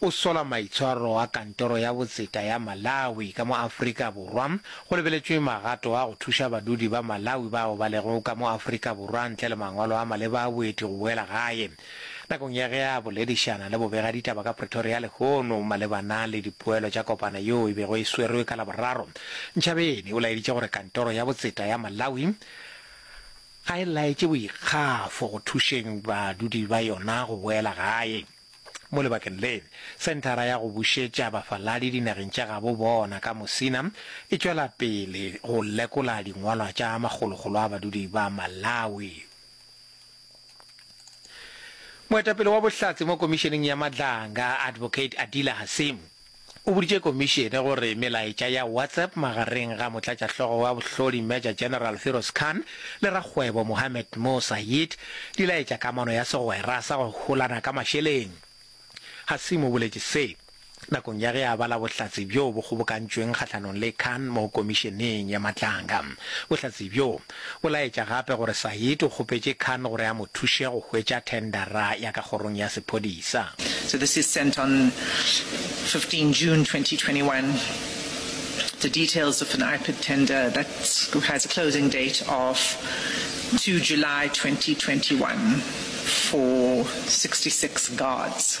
o sola maitshwaro a Kantoro ya Botseta ya Malawi ka mo Afrika Borwa, go lebeletšwe magato a go thuša badudi ba Malawi bao ba lego ka mo Afrika Borwa ntle le mangwalo a maleba a boeti go boela gae. Nakong ya ge a boledišana le bobegaditaba ka Pretoria lehono malebana le dipoelo tša kopano yeo e bego e swerwe ka Laboraro, Nchabeni o laeditše gore Kantoro ya Botseta ya Malawi ga e laetše boikgafo go thušeng badudi ba yona go boela gae. Mo lebakeng le, Senthara ya go Bušetša Bafaladi Dinageng tša Gabo Bona ka Mosina e tšwela pele go lekola dingwalwa tša makgolokgolo a badudi ba Malawi. Moetapele wa Bohlatse mo Komišeneng ya Madlanga, Advocate Adila Hasimu, O boditše Komišene gore melaetša ya WhatsApp magareng ga Motlatšahlogo wa Bohlodi Major General Firoz Khan le rakgwebo Mohammed Mo Sayid di laetša kamano ya segwera sa go holana ka mašeleng. Hasim o boletše se nakong ya ge a bala bohlatse bjo bo kgobokantšweng kgahlanong le Khan mo Komišeneng ya Matlanga. Bohlatse bjo, O laetša gape gore Said o kgopetše Khan gore a mo thuše go hwetša thendara ya ka kgorong ya sephodisa. So this is sent on 15 June 2021. The details of an IPID tender that has a closing date of 2 July 2021 for 66 guards.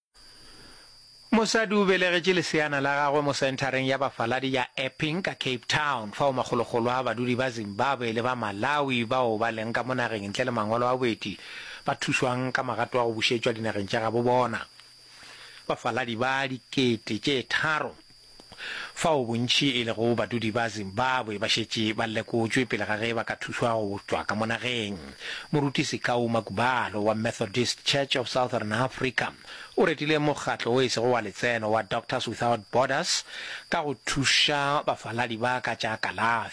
Mosadi o belegetše leseana la gagwe mo senthareng ya bafaladi ya Epping ka Cape Town, fao makgolokgolo a badudi ba Zimbabwe le ba Malawi bao ba leng ka mo nageng ntle le mangwalo a boeti ba thušwang ka magato a go bušetšwa dinageng tša gabo bona. Bafaladi ba dikete tše tharo fao bontši e lego badudi ba Zimbabwe ba šetše ba lekotšwe pele ga ge ba ka thušwa go tšwa ka mo nageng. Moruti Sekau Magubalo wa Methodist Church of Southern Africa o retile mokgatlo o e sego wa letseno wa Doctors Without Borders ka go thuša bafaladi ba ka tša kalafi.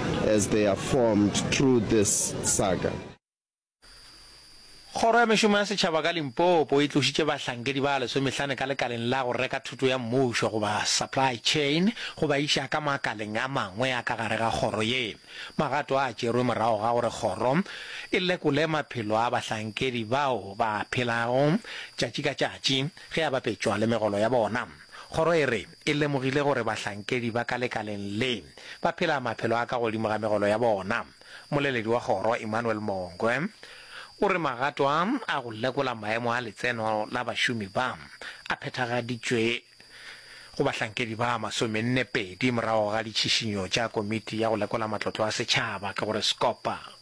as they are formed through this saga. Kgoro ya Mešomo ya Setšhaba ka Limpopo e tlošitše bahlankedi ba lesomehlane ka lekaleng la go reka thuto ya mmušo goba supply chain go ba iša ka makaleng a mangwe a ka gare ga kgoro ye. Magato a tšerwe morago ga gore kgoro e lekole maphelo a bahlankedi bao ba phelago tšatši ka tšatši ge a bapetšwa le megolo ya bona. Kgoro e re, Ke lemogile gore bahlankedi ba ka lekaleng le ba phela maphelo a ka godimo ga megolo ya bona. Moleledi wa kgoro, Emmanuel Mongwe, o re magato a a go lekola maemo a letseno la bašomi ba a phethagaditšwe go bahlankedi ba masomenne pedi morago ga ditšhišinyo tša Komiti ya go Lekola Matlotlo a Setšhaba, ke go re Scopa.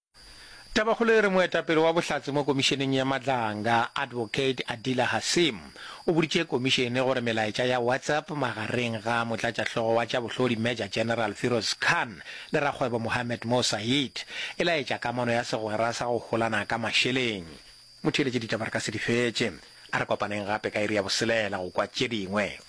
Tabakgolo e re moetapele wa Bohlatse mo Komišeneng ya Madlanga, Advocate Adila Hassim, o boditše komišene gore melaetša ya WhatsApp magareng ga motlatšahlogo wa tša bohlodi Major General Firoz Khan le rakgwebo Mohammed Mo Saeed e laetša kamano ya segwera sa go holana ka mašeleng. Motheeletše ditaba re ka se di fetše. A re kopaneng gape ka iri ya boselela go kwa tše dingwe.